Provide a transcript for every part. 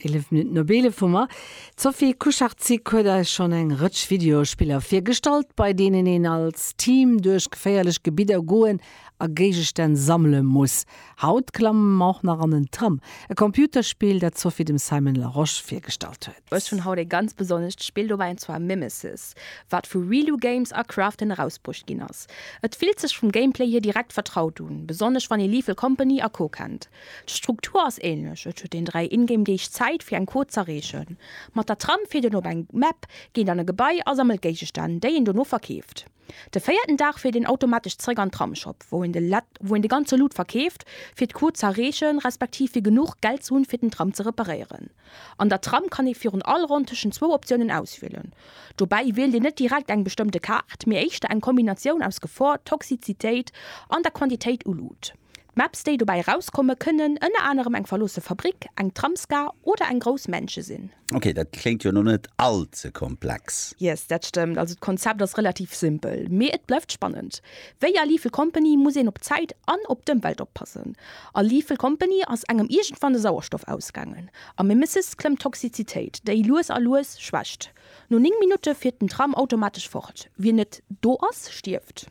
Eelef Minutten op eelef hu mer. D'Sophie Kucharczyk huet eis schonn eng Rëtsch Videospiller virgestallt, bei deenen een als Team duerch geféierlech Gebidder goen a Géigestänn sammele muss. Haut klamme mer och nach an en Tram, e Computerspill, dat d'Sophie dem Simon Larosche virgestallt huet. Ech hunn haut ee ganz besonnescht Spill dobäi, an zwar Mimesis, wat vu Reeloo Games a Krafton erausbruecht ginn ass. Et fillt sech vum Gameplay hier direkt vertraut un, besonnesch wann ee Lethal Company a Co. Kennt. D'Struktur ass ähnlech, et huet een 3 Ingame Deeg Zäit fir eng Quot z'erreechen. Mat der Tram fiert een op eng Map, geet an e Gebai a sammelt Géigestänn, déi een dono verkeeft. De véierten Dag fiert een automatesch zeréck an Tramshop, wou een de ganze Loot verkeeft, fir d'Quot z'erreechen, respektiv fir genuch Geld ze hunn, fir den Tram ze reparéieren. An der Tram kann ee virun all Ronn tëschent zwou Optiounen auswielen. Dobäi wielt een net direkt eng bestëmmte Kaart, mee éischter eng Kombinatioun aus Gefor, Toxizitéit an der Quantitéit u Loot. D'Maps déi dobäi erauskomme kënnen ënner anerem eng verloosse Fabrik, eng Tramsgar oder eng grouss Mansion sinn. Ok, dat kléngt jo lo net all ze komplex. Yes, dat stëmmt. Also d'Konzept ass relativ simpel, mee et bleift spannend. Wéi a Lethal Company muss een op d'Zäit an op d'Ëmwelt oppassen. A Lethal Company ass engem iergendwann de Sauerstoff ausgaangen. A Mimesis klëmmt d'Toxizitéit, déi lues a lues schwächt. No 9 Minutte fiert den Tram automatesch fort. Wien net do ass, stierft.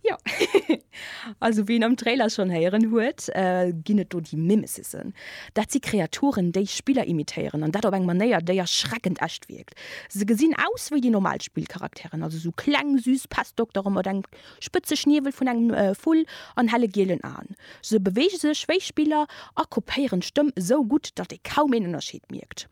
Jo, also wéi een am Trailer schonn héieren huet, ginn et do déi Mimesisen. Dat si Kreaturen, déi Spiller imitéieren, an dat op eng Manéier, déi erschreckend echt wierkt. Se gesinn aus wéi déi normal Spillcharakteren, also sou kleng, süss Pestdoktere mat engem spëtze Schniewel vun engem Vull an helle gielen Aen. Se beweege sech wéi Spiller a kopéieren d'Stëmm esou gutt, datt ee kaum een Ënnerscheed mierkt.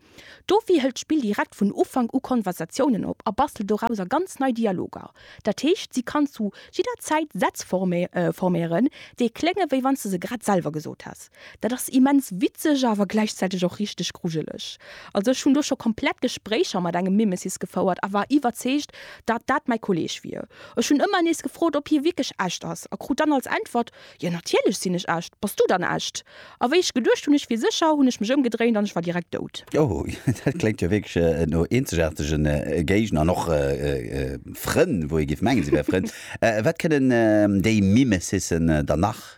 Dofir hëlt d'Spill direkt vun Ufank u Konversatiounen op a bastelt dorauser ganz nei Dialoger. Dat heescht, si kann zu jidder Zäit Sätz forméieren, déi klénge wéi wann s de se grad selwer gesot häss. Dat ass immens witzeg, awer gläichzäiteg och richteg grujeleg. Also ech hunn do scho komplett Gespréicher mat engem Mimesis gefouert a war iwwerzeegt, datt dat mäi Kolleg wier. Ech hunn ëmmer nees gefrot, ob hie wierklech echt ass a krut dann als Äntwert, Jo, natierlech sinn ech echt. Bass du dann echt? A wéi ech geduecht hunn, ech wier sécher, hunn ech mech ëmgedréint an ech war direkt dout. Oh, dat kléngt jo wierklech no eenzegaartege Géigner an och Frënn, wou ee géif mengen, si wäre Frënn. Wat kënnen déi Mimesissen dann nach?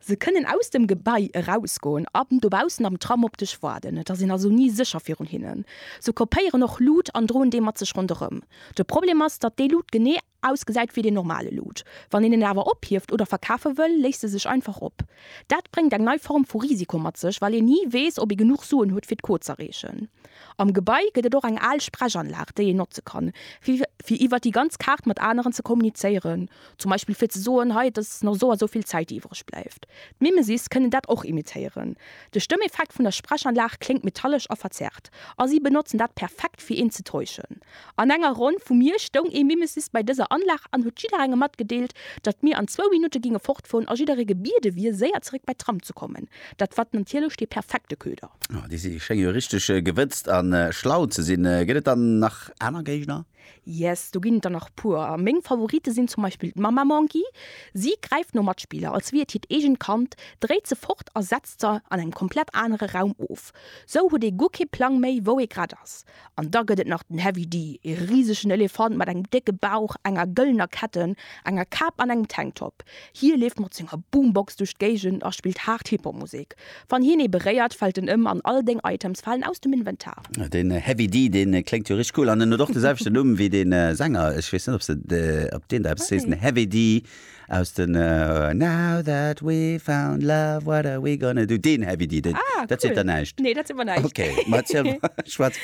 Se kënnen aus dem Gebai erausgoen an dobaussen am Tram op dech waarden. Et ass een also ni sécher virun hinnen. Se kopéieren och Lut an droen déi mat sech ronderëm. De Problem ass, datt déi Lut genee Ausgesäit wéi den normale Loot. Wann een en awer ophieft oder verkafe wëll, léisst e sech einfach op. Dat bréngt eng nei Form vu Risiko mat sech, well een ni weess, ob ee genuch Suen huet, fir d'Quot z'erreechen. Am Gebai gëtt et och eng al Sprechanlag, déi een notze kann, fir iwwer déi ganz Kaart mat aneren ze kommunizéieren, zum Beispill fir ze soen, hei, et ass nach esou a esou vill Zäit, déi iwwereg bleift. D'Mimesis kënnen dat och imitéieren. De Stëmmeffekt vun der Sprechanlag kléngt metallesch a verzerrt, a si benotzen dat perfekt, fir een ze täuschen. An enger Ronn vu mir stoung ee Mimesis bei dëser Anlag an huet jidderengem matgedeelt, datt mir an zwou Minutte ginge fortfueren a jidderee gebiede wier, séier zeréck bei d'Tram ze kommen. Dat wat natierlech dee perfekte Köder. Oh, déi si schénge jo richteg gewëtzt a schlau ze sinn. Gëtt et dann nach aner Géigner? Yes, do ginn et der nach puer. Meng Favorite sinn zum Beispill d'Mamma Monkey. Si gräift no Matspiller, als wier et hiert eegent Kand, dréit se fort a setzt se an engem komplett anere Raum of. Sou huet ee guer kee Plang méi, wou ee grad ass. An da gëtt et nach den Heavy D, ee risegen Elefant mat engem décke Bauch, enger gëllener Ketten, enger Kap an engem Tanktop. Hie leeft mat senger Boombox duerch d'Géigend a spillt haart Hip-Hop-Musek. Wann hien ee beréiert, fält en ëm an all deng Items falen aus dem Inventar. Den Heavy D, dee kléngt jo richteg cool an en huet och de selwechten Numm wéi de Sänger. Ech weess net, ob deen der eppes seet, den Heavy D. Aus den Now that we found love, what are we gonna do? Deen Heavy D, deen, ah, dat cool. seet der näischt? Nee, dat seet mer näischt. Okay, mat schwarz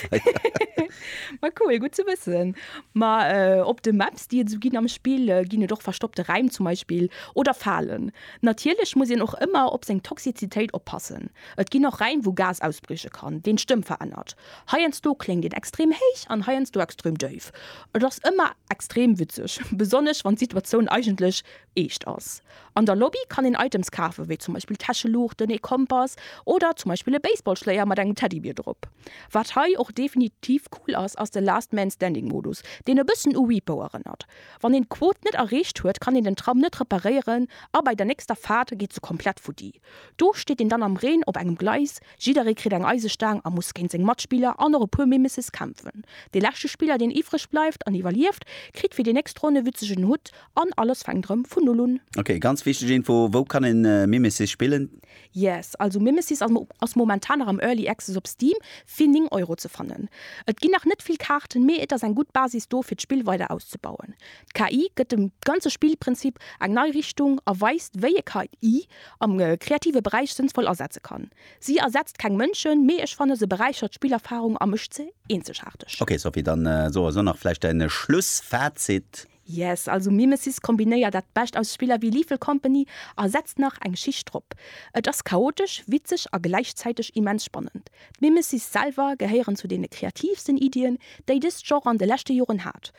Ma cool, gutt ze wëssen. Ma äh, op de Maps, déi et sou ginn am Spill, äh, ginn et och verstoppte Räim zum Beispill oder Falen. Natierlech muss een och ëmmer op seng Toxizitéit oppassen. Et ginn och Räim, wou Gas ausbrieche kann, deen d'Stëmm verännert. Heiansdo kléngt een extrem héich an heiansdo extrem déif. Et ass ëmmer extrem witzeg, besonnesch wann d'Situatioun eigentlech eescht ass. An der Lobby kann een Items kafen, wéi zum Beispill Täscheluuchten, ee Kompass oder zum Beispill e Baseballschléier mat engem Teddybier drop. Wat hei och definitiv cool ass, ass de Last Man Standing Modus, deen e bëssen u Repo erënnert. Wann een d'Quot net erreecht huet, kann een den Tram net reparéieren a bei der nächster Faart geet se komplett futti. Do steet een dann am Reen op engem Gleis, jidderee kritt eng Eisestaang a muss géint seng Matspiller an och e puer méi Misses kämpfen. Dee leschte Spiller, deen iwwreg bleift an iwwerlieft, kritt fir déi nächst Ronn e witzegen Hutt an alles fänkt erëm vun Null un. Ok, ganz wichteg Info, wou kann een Mimesis spillen? Yes, also Mimesis ass momentan nach am Early Access op Steam fir 9 Euro ze fannen. Et ginn nach net vill Kaarten, mee et ass eng gutt Basis do fir d'Spill weider auszebauen. D'KI gëtt dem ganze Spillprinzip eng nei Richtung a weist, wéi ee KI am kreative Beräich sënnvoll asetze kann. Si ersetzt keng Mënschen, mee ech fannen, se beräichert d'Spillerfarung a mécht se eenzegaarteg. Ok Sophie, dann so also nach vläicht däin Schlussfazit. Yes, also Mimesis kombinéiert dat Bescht aus Spiller wéi Lethal Company a setzt nach eng Schicht drop. Et ass chaotesch, witzeg a gläichzäiteg immens spannend. D'Mimesis selwer gehéieren zu deene kreatiivsten Iddien, déi dëst Genre an de leschte Joren hat.